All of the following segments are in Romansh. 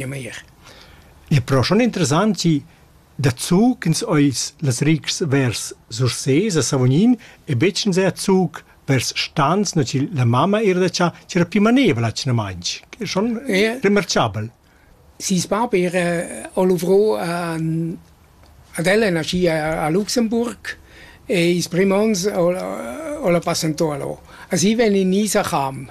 Ja meir. E però schon interessant chi dazu ch'ins ais las rigs vers Sursés a Savognin e betg insè a Zug vers Stans, na chi la mamma eira da cha ch'era più manevra tschnamainch. Schon Yeah. remarchabel. Seis bab era a luvrò an- ad ella nascì a a Luxemburg e ils prüm ons al al a passentà là. A si vegn in Isacham.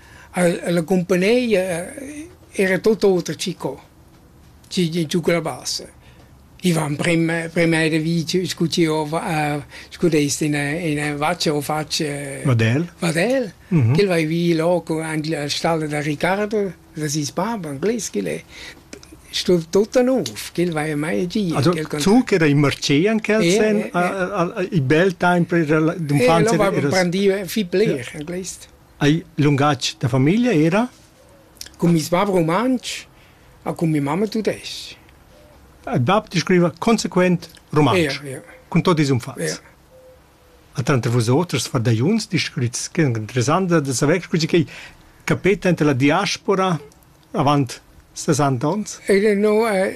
La cumpagnia era tut oter che co, schi giuca la bassa. I van primma primma da vi scu chi hova scu dest in ina vaccia o faccia vadel vadel ch'el vai vi là co aint la stalla da Ricardo da seis bab anglais ch'el è sto tutta nouv ch'el vaja mai gia zu ch'era in marché an quel sen il bel temps per d'unfants era prendiva fi bler anglais Hai lungatg da famiglia era? Cun meis bab rumantsch a cun mia mamma tudesc-ch. Il bab descriva consequent rumantsch, ja, ja. cun tot ils umfats. Ja. A tranter vusoters fardagliuns descrits che interessanta da saver scusi che capeta enter la diaspora avant 60 ons. Ele no è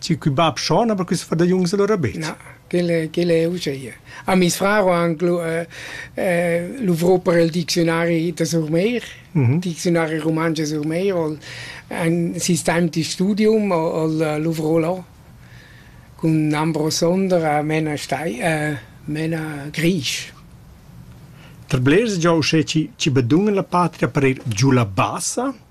Tgi cun bab schon, aber quist fa da jungs allora bet? Na, quel è, quel è uscheia. A mis frar ho anche lu, äh, äh, luvrò per il diccionari da Surmeir, mm diccionari romange Surmeir, ol ein sistem di studium, ol äh, luvrò là cun Ambro Sonder a Mena Stei, äh, Mena Grisch. Per blers già uschè ci, ci bedungen la patria per il giù la bassa?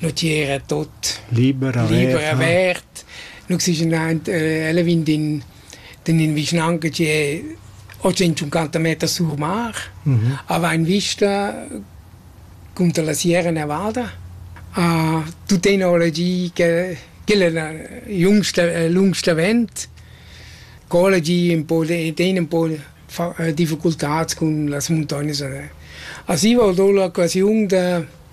Leutier è tot liber, liber avert. Nus sischen aint, äh, ella vegn d'in d'in in vischnanca che è 850 meter sur mar, mhm. ava in vista cunter la Sierra Nevada. Uh, tu tecnologi che quella è la jüngsta, äh, lungsta vent. Collegi un po' ten un po' difficultats cun las montagnes. Así valdó l'occasión de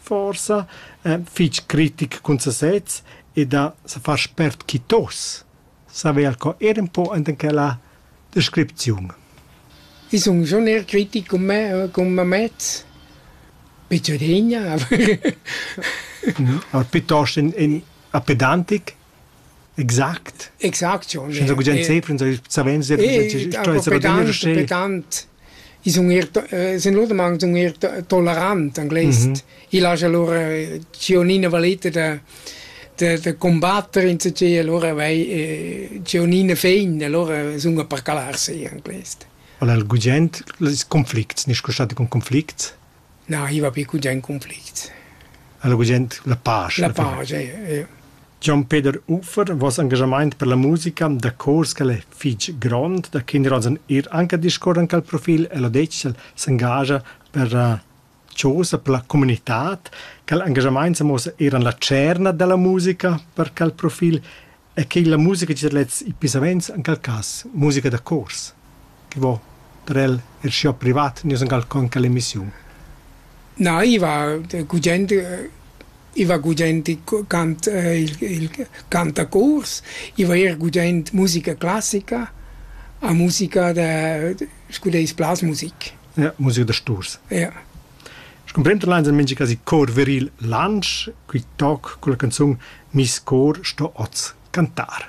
forsa eh, fich critic cun sasez e da se far spert quitos saver co er un po enten quella descripziun. I sun schon eher kritisch cum me, cum me mezz. Picciodegna. no, piuttosto in, in a pedantic Exact. Exact, ja. Senza gugent sempre, savens der Pertant i sun eir sun lodamang sun eir tolerant in glais. Il haja lura Cionina valeta da da da combatter insatgé, allora vai Cionina fein, allora sun a per calar se in glais. Allora il gugent, ils conflicts, nisco stati con conflicts? na arriva pli gugent conflict. Alla gugent la pace. La pace, ja. Gian Peter Uffer vos engagement per la musica da cors che è fitg grond, da Kinderhosen ir anche discorren al profil e lo decel s'engagia per uh, cosa per la comunità, che l'engagement se mossa eran la cerna della musica per quel profil e che la musica da lezs e pisaments en quel cass musica da chors che vo per el er schiu privat nus en quel con quelle emissiun. Na, iva gugent iva gugent cant il, il cantacors, iva er gugent musica classica a musica da scu deis blasmusik. Ja, musica da sturs. Ja. Scumprenda leins en mintga casi cor viril Lantsch, qui toc culla canzun Nis cor sto oz cantar.